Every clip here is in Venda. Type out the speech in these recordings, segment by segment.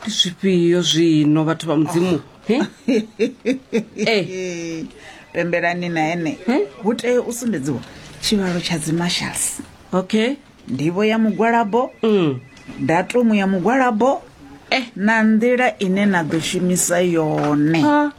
ndi zwifhio zwino vhathu vha mudzimu he Eh, pembelani na ene Eh? hu tea u sumbedziwa tshivhalo tsha dzimarshals okay ndivho ya mugwalabo mm. datumu ya mugwalabo Eh. na nḓila ine na ḓo shumisa yone ha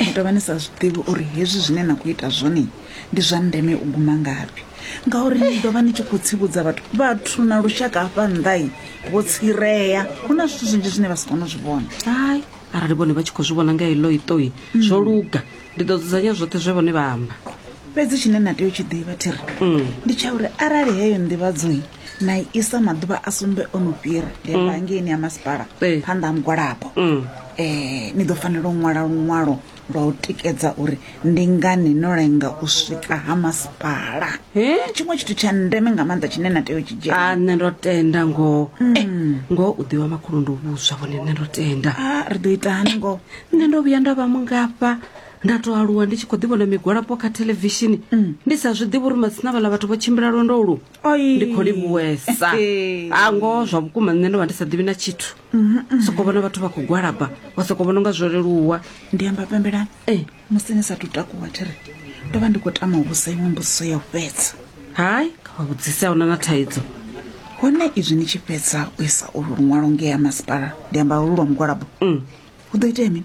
Ni tou vha ni sa zwi ḓivhi uri hezwi zwine na khou ita zwone ndi zwa ndeme u guma ngafhi ngauri ni ḓo vha ni tshi khou tsivhudza vhathu vhathu na lushaka hafha nnḓai vho tsireya hu na zwithu zwinzhi zwine vha si kone u zwi vhona hai arali vhone vha tshi khou zwi vhona nga heḽo itoi mm. zwo luga ndi ḓo dzudzanya zwoṱhe zwe vhone vha amba fhedzi tshine na tea u tshi ḓivha thiri mm. ndi tsha uri arali heyo nḓivhadzoi na isa maḓuvha a sumbe o no fhira ndi amba mm. ngeini ya masipala eh. phanḓa ha mugwalabo um ni ḓo fanela u ṅwala luṅwalo lwa u tikedza uri ndi ngani no lenga u swika ha masipala tshiṅwe tshithu tsha ndeme nga maanḓa tshine na tea u tshi dzhia ah, nṋe ndo tenda ngoho mm. eh, ngoho u ḓiwa makhulu ndo vhuswa vhone nṋe ndo tenda ah, ri ḓo ita hani ngoho nṋe ndo vhuya nda vha mungafha nda to aluwa ndi tshi khou ḓivhona migwalapo kha thelevishini mm. ndi sa zwi ḓivhi uri matsina vhala vhathu vho tshimbila lwendo lu Oi. ndi khou livhuwesa Ee. a ngoho zwa vhukuma nṋe ndo vha ndi sa ḓivhi na tshithu soko vhona vhathu vha khou gwalaba wa soko vhona unga zwo leluwa ndi amba pembelani Eh. musi ni sathu takuwa thiri ndo vha ndi khou tama u vhusa iṅwe mbudziso ya u fhedza hai kha vha vhudzise a huna na thaidzo hone izwi ni tshi fhedza u isa ulu luṅwalo ngea masipala ndi amba ulu lwa mugwalabo Mm. hu ḓo itea mini